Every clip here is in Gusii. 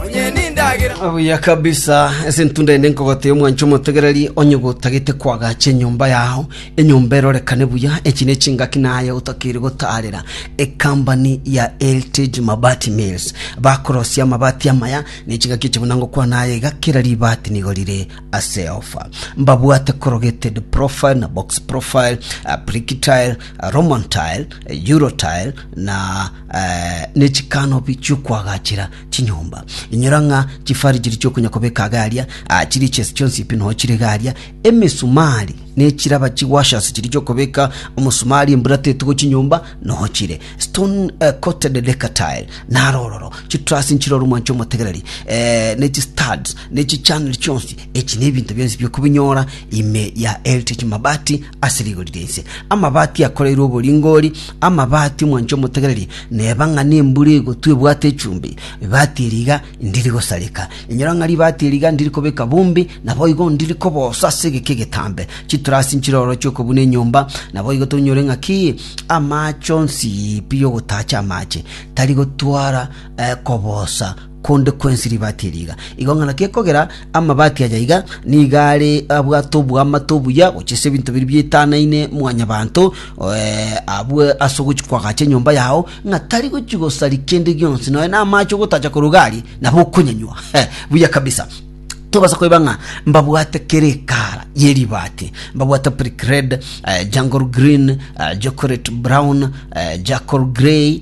Onye nindagera. Buya kabisa ase intwe ndende nkogotebia omwancho omotegereri onye gotagete kwagacha enyomba yao enyomba erorekane buya echi ne chingaki naye otakeire gotaarera ekambani ya Eltage Mabati Mills bakorosia amabati amaya ne chingaki echi buna ngokwana aye iga kera ribati nigo rire ase ofa mbabwate corrugated profile na box profile uh, brick tile uh, roman tile uh, euro tile na ne chikanobi chi'okoagachera chinyomba. Inyora ng'a chifari chiria chi'okonyakobeka iga aria, ah, chiria echiasi chionsi pi nonya chire iga aria, emesumari na echiraba chi'washers chiria chi'okobeka omosumari embura tetigwa chinyomba nonya chire. Stone eh, coated lacquer tile naro ororo, chitruss nchire ore omwancho omotegereri, eh, ne chistuds ne chichannel chionsi, echi nebinto bionsi biokobinyora ime ya Heritage Mabati. Ase rigori ri'ense amabati akoreirwe oboringoori, amabati omwancha omotegereri, neba ng'a nembura egotwa ebwate echumbi, ribaati eri iga ndiri gosareka. Inyora ng'a ribaati eri iga ndiri kobeka bumbi, naboigo ndiri koboosa ase egeka egetambe. Chiturasi nchire ororo chi'okobuna enyomba, naboigo tonyore ng'a ki amaache onsi, pi y'ogotacha amaache tari gotwara koboosa. konde kwensi ribaati eri iga. Igo ng'a naki ekogera amabaati aya iga nigo are abwate oboamate obuya gochia ase ebinto biria bietanaine mwanyabanto, eh, abue ase ogochia koagacha enyomba yao, ng'a tari gochia gosaria kende gionsi, nonya na amache ogotacha koruga aria, nabo okonyanywa. He, buya kabisa. Tobasa koeba ng'a mbabwate kera ekara ye ribaati, mbabwate brick red, eh, jungle green, eh, chocolate brown, eh, charcoal grey,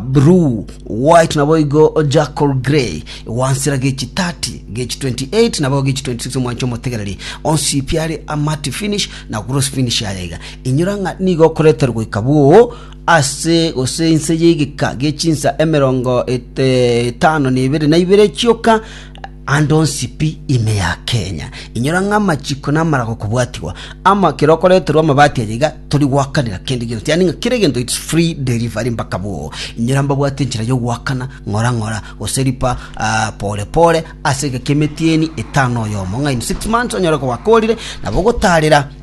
Blue, White naboigo Jackal Grey, gwansera gechi 30, gechi 28 naboigo gechi 26 omwancha omotegereri, onsi pi are a matte finish na gloss finish aya iga. Inyora ng'a nigo okoreterwa goika bwoo ase gose inse y'egeka gechinsa emerongo et- etano na ibere na ibere chioka Ande onsi pi ime ya Kenya, inyora ng'a amachiko namaraga okobwatigwa. Ama, kera okoreterwa amabati aya iga tori goakanera kende gento, yaani ng'a kera egento it's free delivery mbaka boo. Inyora mbabwate enchera y'ogoakana ng'ora ng'ora, gose ripa ah, pore pore, ase egeka emetieni etano oyomo, ng'a in six months onyore koba korire, nabo ogotaarera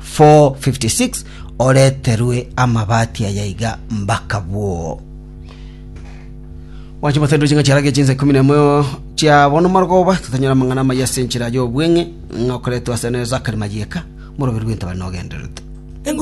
4:56 oreterwe amabati aya iga mbaka bwoo. Mwanche motenderwe chinga chiarage chinsa ikumi na emo chia bono marogoba totanyora amang'ana amaya ase enchera y'obweng'e ng'a okoretwe ase Zakari Mayeka, moroberi bw'entabare nogendererete.